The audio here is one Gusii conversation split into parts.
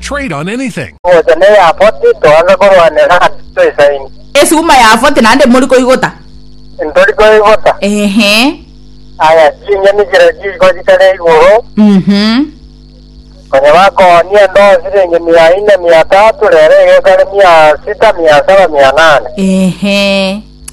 Trade on anything. Gocha ne Yafoti toansa korwanera ase toisaini. Esuguma Yafoti naende mori koigota. Ntori koigota. Eeh. Aya, chinyoni chiria chiriko chikare igoro. Uhum. Konya bakooni ande o siringi mia ine, mia tatu, rero egekare mia sita, mia saba, mia nane. Eeh.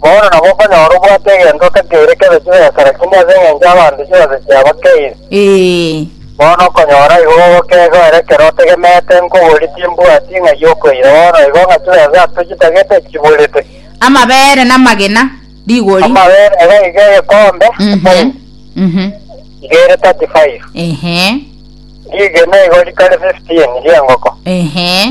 Bono nabo okonyora obwate egento otakeire kebe chibesa, lakini ase engencho y'abanto chibesa chiabo keire. Ee. Bono okonyora igo ogokegwa ere ekero otegemeete nkobori timbwati ng'ai okoira, bono igo ng'a chibesa ase chitagete chiburete. Amabere namagena, rigori. Amabere nigo iga egekombe, Mhm. efaini, Mhm. iga ere 35. Ehe. Rigena igo rikare 15 ri'engoko. Ehe.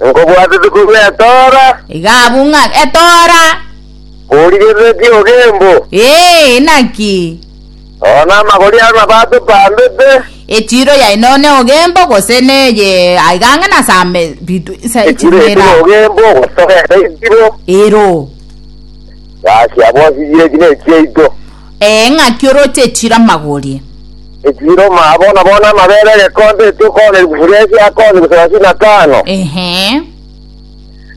Nkobwatete korwa etoora. Iga abwo ng'a etoora. Korigereretie ogembo. Ee, inaki? Oo namagori aro nabo atopandete. Echiro yaino ne ogembo gose neye aiga ang'e na same bitu sa Echiro yaito na ogembo gose ero. Gaki abwo sigire eki ne chiaito. Ee, ng'aki oroche echiro amagorie? Echiro omaa bono bono amabere egekonto etokooneri gufuria ase akoonyi gosalasini na tano, Ehe,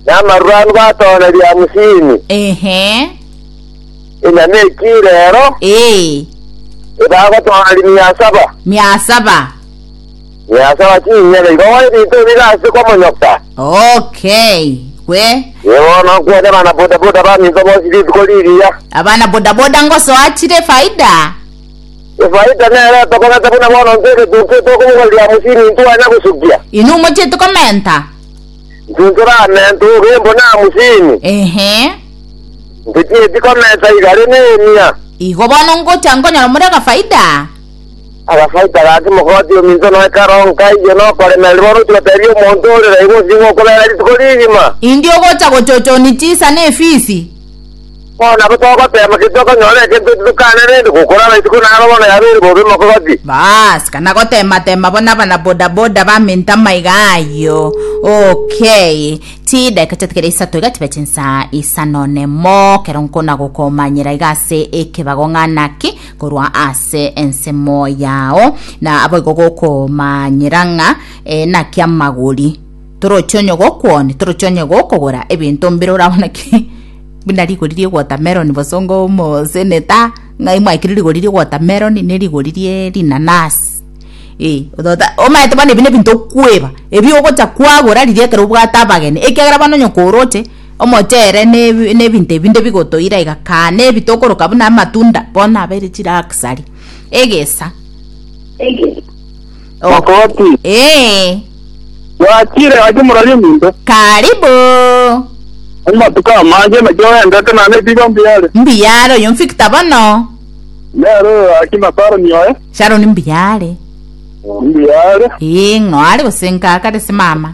na amarure anu batooneri hamusini. ehe, Enyama ekio reero ee, ebagotooneri mia saba. mia saba. Nyasae o chinyene, igo gori ritubire ase kw'omonyoka. Okay, gwe. Inye bono nkwete abana bodaboda baminto bonsi rituko riria. Abana bodaboda ngosoa chire efaida? Efaida nero etokomenta buna bono intwe egetuntu etokobogorera mosini intwe onya gosukia. Inwe mochiete komenta? Intwe ntoramenta ogembo na mosini. Ehe. Intwe tieti komenta iga rende emia. Igo bono ngocha nkonyora more gafaida? Agasaika gaki mogoti ominto na ekero nkaiyo nokoremererwa oroche gotebia omonto ore raibo onsi ng'a okobera rituko rigima. Indi ogocha gochochoni chisa ne efisi. Bono nabo togotema ki tokonyora egento eki tokane rende gokora amaisiko naro bono yabeire bobe mogoti. Baas, kana gotema tema bona abana boda boda baminto amaiga ayio. Okay. Chidakika chia kera isato iga chibe chinsa isano nemo kero nkona gokomanyera iga ase ekebago ng'a naki korwa ase ensemo yao na aboigo gokomanyera ng'a eh, naki amagori toroche onye gokwoni toroche onye gokogora ebinto mbire orabona ki buna rigori rie watermelon bosongo moseneta ng'ai mwaikire rigori rie watermelon ne rigori rie rinanasi Eh, otota omaete bono ebi nebinto okweba ebi ogocha kwagora riria ekero obwate abageni ekiagera bono onye koroche Omocheere ne- nebinto ebinde bigotoira iga kaa, nebi tokoroka buna amatunda, bono abeire chiraksari, egesa. O- Makoti. Ee, Bwachire gaki morori ominto. karibu. Amatuko amange naki oendete naende ebigo mbiare. Mbuyaare oyo Victor bono. Nero gaki na Saroni oye. Sharon mbuyaare. Mbiare. Ee, ng'o are gose nkaaka gese mama?